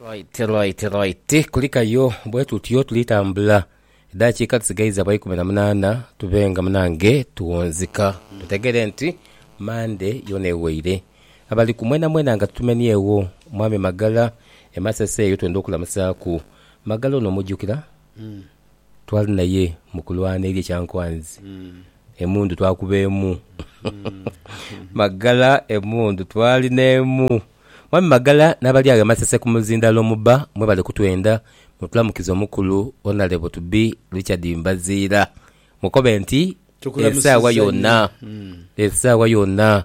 Right right right kulikayo bwetutyo tuli tambula edhakiika dhisigaiza bwa ikumi na munaana tube nga munange tuwunzika tutegere nti Monday yoona eweire abali ku mwena mwena nga tutumenyeegho mwami Magala e Masese eyo twenda okulamusaaku Magala ono omujjukira? Twali naye mu kulwana eri e Kyankwanzi, emundu twakuba emu. Magala, Emundu twali n'emu. Mwami Magala n'abali agho e Masese ku muzindalo muba mwebale kutwenda, mutulamukize omukulu Onalebo to be Richard Mbaziira. Mukobe nti esaawa yoona, esaawa yoona.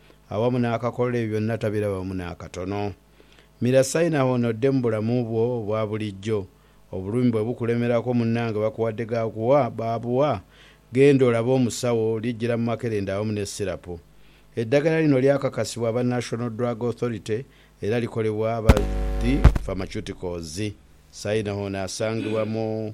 awamu n'akakola ebyo byonna tabirabamu n'akatono. Mira sayini awo ono odde mu bulamu bwo obwa bulijjo. Obulumi bwe bukulemerako munnange bakuwadde ga kuwa baabuwa, genda olabe omusawo, lijjira mu makerenda awamu ne sirapu. Eddagala lino lyakakasibwa aba National Drug Authority era likolebwa aba The Pharmaceuticals. Sayina ono asangibwa mu.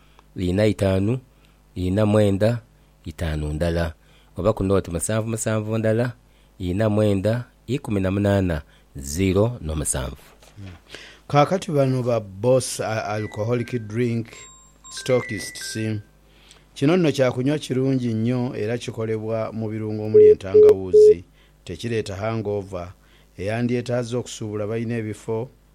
Inha itaanu, inha mwenda, itaanu ndala. Oba ku nooti musanvu musanvu ndala, inha mwenda, ikumi na munaana, ziro n'omusanvu. Kaakati bano ba Boss Alcoholic Drink Stockists. Kino nno kya kunywa kirungi nnyo era kikolebwa mu birungo omuli entangawuuzi. Tekireeta hangover, eyandyetaaze okusuubula balina ebifo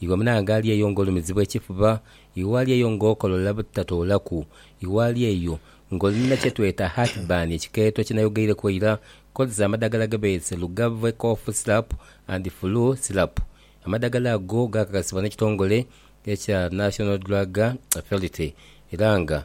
Iwe munange ali eyo ng'olumizibwa ekifuba, iwe ali eyo ng'okolola butatoolaku, iwe ali eyo ng'oli na kye tweta heartburn, ekikeeto kye nayogeireku eira, kozesa amadagala ge beese Lugave Cough Syrup and Flu Syrup. Amadagala ago gaakakasibwa n'ekitongole ekya National Drug Authority era nga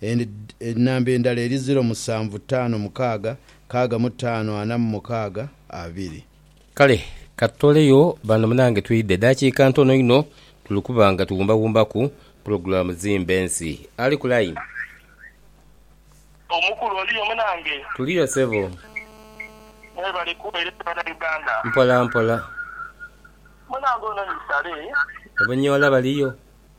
Ed, Enamba endala eri ziro musanvu taano mukaaga kaaga mu taano ana mu mukaaga abiri. Kale katutoleyo bano munange twidhe edakika ntono inho tuli kuba nga tuwumbawumbaku pulogulamu zimba ensi. Ali ku line? Omukulu oliyo munange? Tuliyo sebo. Mwebale kuwereza bana Uganda. Mpola mpola. Munange ono ni sale. Obunyola baliyo?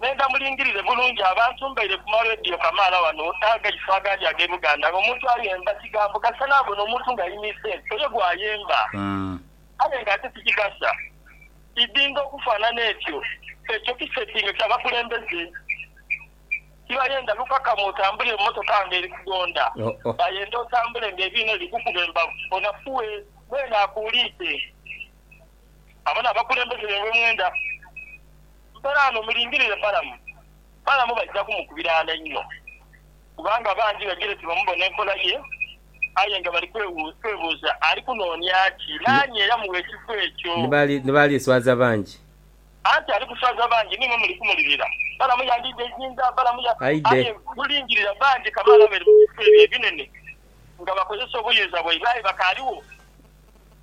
Nhenda mulingirire bulungi abantu. Mbaire ku ma radio kamaala wano n'agaiso agandi ag'e Buganda nga omuntu ayemba kigambo kasita naabona omuntu nga aini sente oyo gwayemba aye nga ate tikigasa idinga okufanana etyo. Ekyo kisetinge kya bakulembeze. Tibayenda lukakamu otambulire mu motoka nga eri kugonda. Bayenda otambule nga ebiina biri kukuba embavu. Onafuwe. Mwene akuuliite. Abano abakulembeze be wemwenda mperaano mulingirire Balamu. Balamu baija kumukubiraana inho kubanga bangi baidhire tibamubona enkola ye aye nga bali kwebuuza ali kunoonia ki? Naani eyamuwa ekifo ekyo? Ni bali swaza bangi. Anti ali kuswaza bangi niimwe muli kumulirira. Balamu yandiidha eizinda? Balamu ya. Aidhe. Aye mulingirire bangi kamaala abali mu bifo ebyo ebinene nga bakozesa obuyinza bwaibwe aye bakaaligho.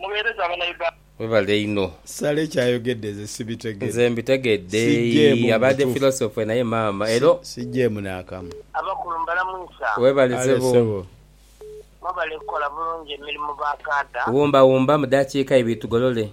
Muweereze abana Uganda. Webale inho. Sale kyayogedde nze sibitegera. Nze mbitegedde yii abade philosopher naye maama elo. Sijeemu naakamu. Abakulu mbalamwisa. Webale sebo. Mwebale kukola bulungi emirimu ba kaada. Wumba wumba mudakiika ibiri tugolole.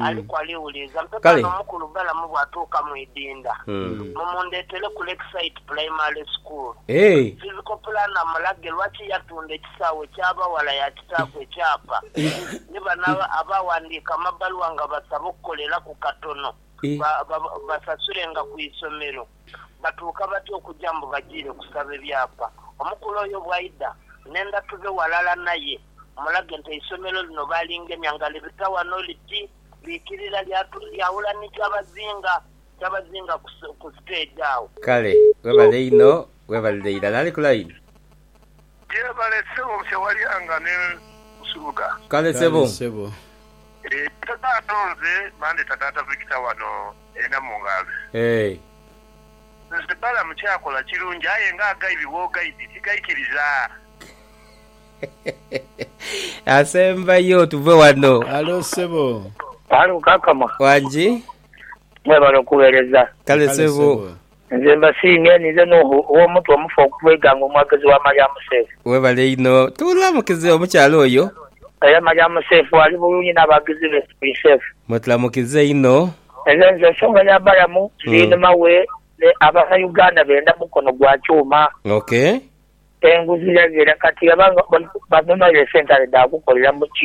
Aliku aliwuliiza. Mpeku Kale. ano omukulu Balamu bw'atuuka mu idinda. Mumundeetere ku Lakeside Primary School. Eeh. Physical planner amulage lwaki yatunda ekisaawe ky'abaghala yaakitaaku ekyapa. Ni bano aba- abaawandiika amabaluwa nga basaba okukoleraku katono Eh. ba- ba- basasulenga ku isomero. Batuuka batya okuja mbu bajiire kusaba ebyapa? Omukulu oyo bw'aidha, n'endhatu dhe ghalala naye. Mulage nti eisomero lino baalingemya nga libita wano liti liikirira lyaghula ni Kyabazinga Kyabazinga ku siteegi agho. Kale webale inho webalire irala ali ku line. Yebale ssebo busa walyanga ne nsubuga. Kale ssebo. Eeh taata nze bandeta taata Victor wano e Namungazi. Eeh. Nze Balamu kyakola kirungi aye nga agaibi bwogaidi tigaikiriza. Asembayo tuve wano. Halo sebo. Halo kakama. Wangi. Mwebale okuwereza. Kale sebo. Nze mbasiimye ninze Nuhu ow'omutwe omufu okuva eighanga omwagezi wa Mariam Seif. Webale inho. Tulamukize omukyala oyo. Era Mariam Seif ali bulungi n'abagizi be Sui Seif. Mwetulamukiza inho. Nze nze ensonga ya balamu ndinuma we ne abana Uganda benda mukono gwa kyuma. Ok. Enguzi yagheera kati abaghala banonayo esente ale dha kukoleramu